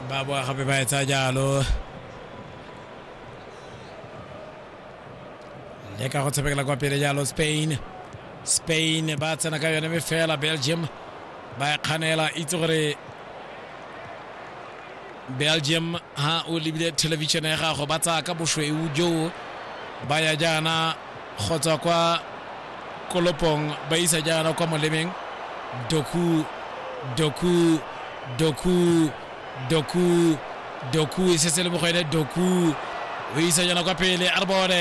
ba boa gape ba etsa jalo le ka go tshamekela kwa pele jalo spain spain ba tsena ka yone mme fela belgium ba e kganela itse gore belgium ha o lebile television ya gago ba tsaya ka bosweu joo ba ya jaana go tswa kwa kolopong ba isa jaana kwa molemeng doku doku doku doku doku e setse le mo go ene doku o isa jaana kwa pele a re bone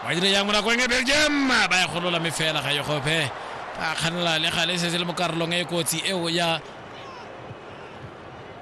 ba dire yang mo nakong e belgium ba e golola mme fela ga e gope ba kganela le gale e setse le mo karolong e e kotsi eo ya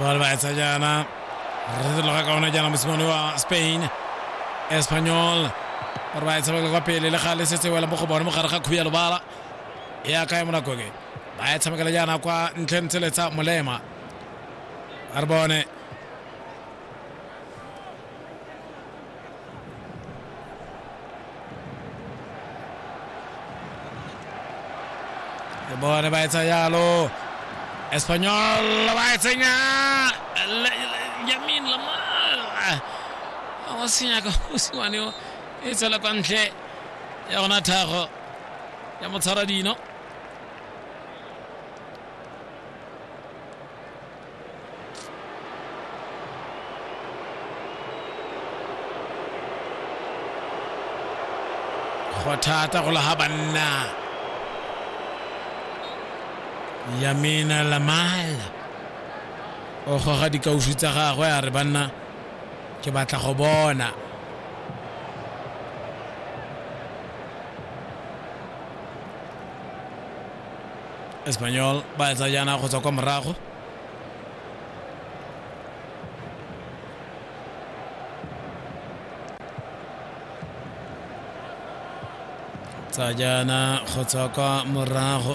Bali bahetsa jaana re setse loga kaona jaana mosimane wa spain espanyol gore ba etshabakela kwa pele le ga le setse wela mo go bone mogare ga khuya lobala e aka ya monako ke ba e tshamekela jaana kwa ntle ntse letsa molema a re bone Ke bone ba etsa jalo. Espanyol ba e tsenya Le- Le- Yamin Lamar a wa senya ka mosiwane o e tsela kwa ntle ya gona thago ya motshwara dino go thata go laga banna yamina lamala o goga dikaufi tsa gagwe a re banna ke batla go bona espanyol ba etsa jaana go tswa kwa morago tsa jaana go tswa kwa morago